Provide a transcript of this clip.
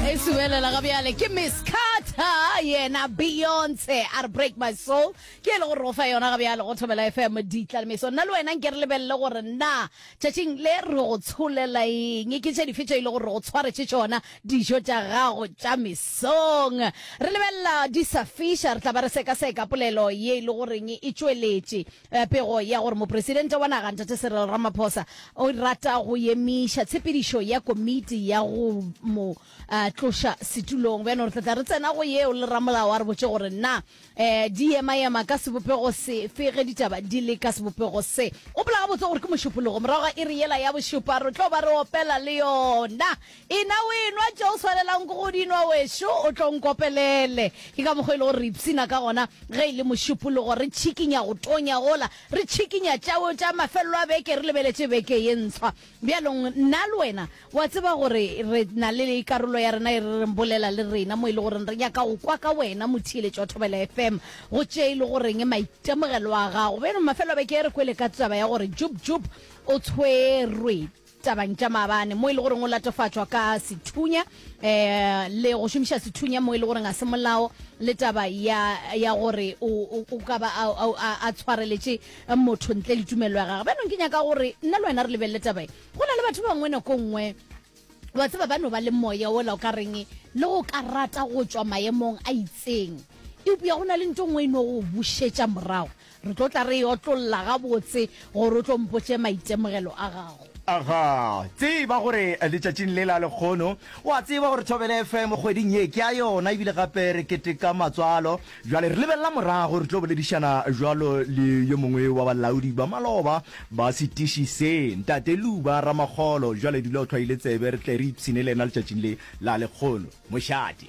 e subelela ga bjale ke miss carter yena beyonce a re break my soul ke e le gore o fa yona ga bjale go thobela fm ditlalemeso nna le wena nke re lebelele gore na tšatšing le re go tsholela eng ke tše dife tše e le gore re go tshwaretše tšona dijo tša gago tša mesong re lebelela disafisha re tla ba re sekaseka polelo ye e le goreng e tšweletše Pego ya gore Mopresidente wa naga Ntate Cyril Ramaphosa o rata go emiša tshepedišo ya komiti ya go mo tloša setulong. Bjano re tla tla re tsena go yeo le ramolao a re botše gore na di yema-yema ka sebopego sefe ge ditaba di le ka sebopego se. Gopola gabotse gore ke Mošupulogo morago ga iri yela ya bošupa re tlo ba re opela le yona Ena o enwa tše o swanelago ke go di nwa, wešo, o tlo nkopelele. Ke ka mokgwa e lego re ipshina ka gona ge e le Mošupologo, re tšhikinya go tonya gola, re tšhikinya tša go tša mafelelo a beke, re lebeletše beke ye ntshwa. Bjalong, nna le wena, wa tseba gore re na le karolo ya rena e re reng Bolela le Rena, mo e lego gore re nyaka go kwa ka wena, motheeletši wa Thobela FM, go tše e lego reng maitemogelo a gago. Bjalo, mafelo a beke e re kwele ka taba ya gore Jub Jub o tshwerwe. tabang tša maabane mo e le goreng o latofatšwa ka sethunya um le go šomiša sethunya mo e le goreng ga se molao le taba ya ya gore o o- o ka ba a- a- a a tshwareletše motho ntle le tumelo ya gagwe bjanong ke nyaka gore nna le wena re lebelele taba e go na le batho ba bangwe nako nngwe wa tseba ba no ba le moya ola o ka reng le go ka rata go tšwa maemong a itseng eupša go na le nto nngwe e no go bušetša morago Re tlo tla re e otlolla gabotse gore o tlo mpotše maitemogelo a gago. Ga tseba gore letšatšing le la lekgono, o a tseba gore Thobela FM kgweding ye ke ya yona ebile gape re keteka matswalo. Bjale re lebelela morago, re tlo boledišana bjalo le yo mongwe wa balaodi ba maloba ba setiši se, Ntate Luba Ramakgolo. Bjale dula o tlhwaile tsebe, re tle re ipshine le yena letšatšing le la lekgono. Mošate.